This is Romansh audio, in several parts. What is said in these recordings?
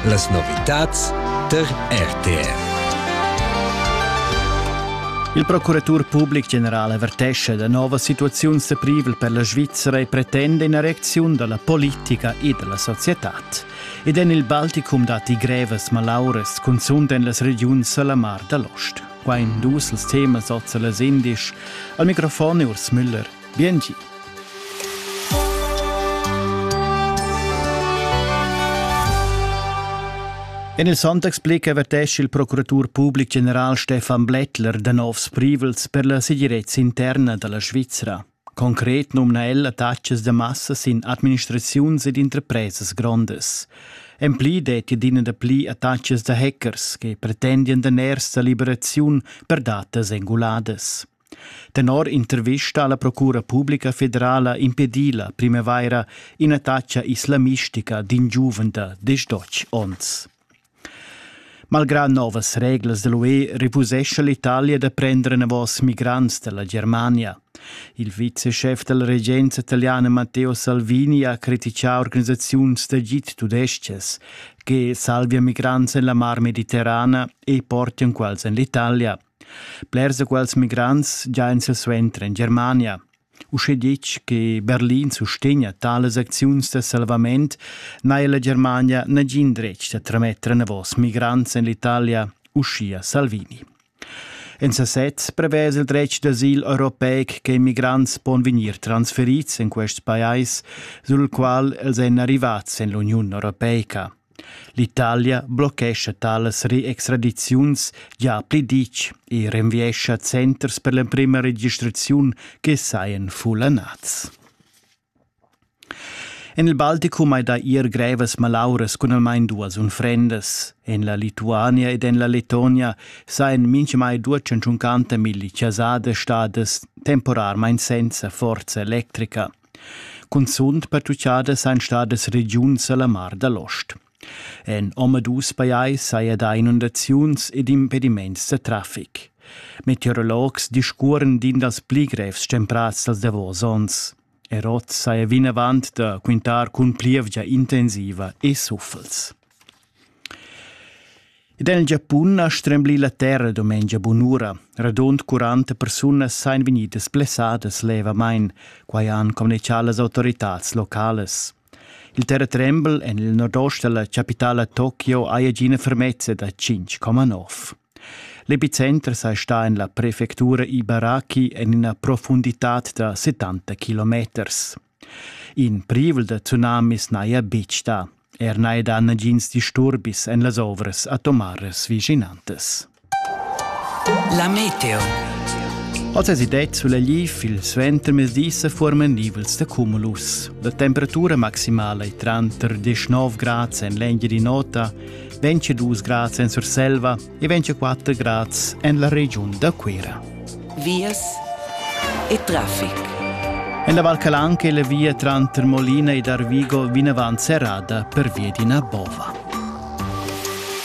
Las novitads tar RTR. Il procuratur public general avertesce da nova situaziun seprivel per la Svizzera e pretende ina reacziun dalla politica e dalla societad. Ed en il Balticum datti grevas malauras, cunzunt en las regiuns alla Mar dall'Ost. Qua in dus els temas oz las indisch. Al microfon è Urs Müller. Biengi. En il Sonntagsblick avertescha il procuratur public general Stefan Blättler da novs privels per la segirezza interna da la Svizra. Concret numna el attacas da massa sin administraziuns ed interpresas grondas. En pli detti adina da pli attacas da hackers che pretendian da ners da liberaziun per datas enguladas. Tenor intervista alla Procura publica federala impedi la primavaira in'attacca islamistica d'in giuven da destotg onns. Malgrà novas reglas dell'UE refusescha l'Italia da prendere novos migrants dalla Germania. Il viceschef della regenza italiana Matteo Salvini ha criticà organisaziuns d'agit tudesches che salvia migrants en la Mar Mediterrana e portian quals en l'Italia. Blers da quels migrants giain silsuenter en Germania. Uschè ditg che Berlin sustegna talas acziuns da salvament, n'ha la Germania nagin dretg da trametter enavos migrants en l'Italia, uschia Salvini. En sasez prevesa il dretg d'asil europeic che immigrants pon vegnir transferids en quests pajais, sul qual els èn arrivats en l'Uniun europeica. L'Italia blochescha talas reextradiziuns gia pli ditg e renviescha centers per l'emprema registraziun che sajan fullanats. En il Balticum hai dà ier grevas malauras cun almain duas unfrendas. En la Lituania ed en la Letonia sajan mintgamai 250 milli chasada stadas temporarmain senza forza electrica. Cunzunt pertuchada sajan stadas regiuns a la Mar da l'Ost. En omadus pajais saja dà inundaziuns ed impediments da traffic. Meteorologs discurren d'in dals pli grevs stemprads dals davos onns. Er oz saja vinavant da quintar cun plievgia intensiva e suffels. Ed el Giapun ha stremblì la terra dumengia bunura. Radund 40 persunas sajan vegnidas blessadas levamain, quai han communitgà las autoritads localas. Il terratrembel en il nordost della capitala Tokio haja gina fermezza da 5,9. L'epicenter sei sta en la prefectura Ibaraki en ina profundità da 70 kilometers. In privel da tsunamis n'haja betg dà. Er n'haja dà nagins disturbis en las ovras atomaras vischinantas. La meteo. Oz es idee sulla lif il suentermezdi sa forman nivels da cumulus. La temperatura maximala è tranter 19 grads en l'Engiadin'Ota, 22 grads en Surselva e 24 grads en la regiun da Cuira. Vias e traffic. En la Val Calanca è la via tranter Molina ed Arvigo vinavant serrada pervia d'ina bova.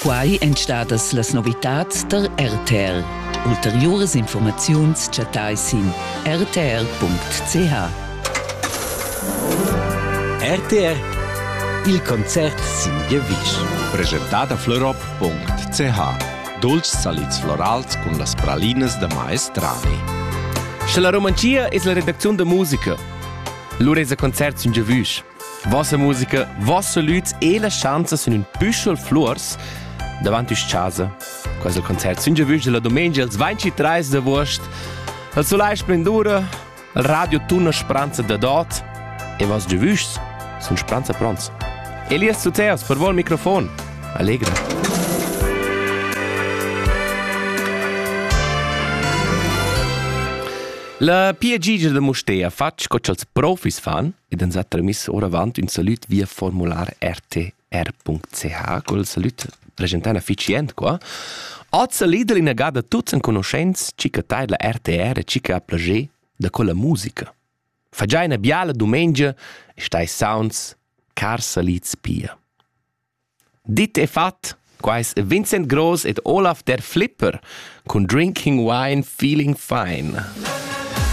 Quai èn stadas las novitads tar RTL. Ulteriuras informaziuns chattai sin rtr.ch. RTR Il concert sin Gievisch. Presentat a Fleurob www.ch dolcs salids florals cun las pralinas da maestrani. Sche la romanzia es la redacziun da musica, lur es a concert sun giavüsch. Vossa musica, voss salüds e la schanza sun ün püschel flurs davant üs casa. Quasi il concert sun giavüsch della domenica als 23 d'agost. El solai splendura, Il radio tuna spranza da dot e vas giu vuschs sun spranza pronts. Elias Tuteas per vol microfon. Allegra. La PG da Mustea fatg co ch'als profis fan ed ans ha tramiss oravant ün salut via formular RT r.ch cul salüd preschentà na fitschient qua. Hoz s'ha lider inagada tuots enconuschents chi cha taidla RTR e chi cha ha plager da quella musica. Fa già ina biala dumengia e stai sounds car salids pia. Dit e fat, quais Vincent Gross ed Olaf der Flipper cun Drinking Wine Feeling Fine.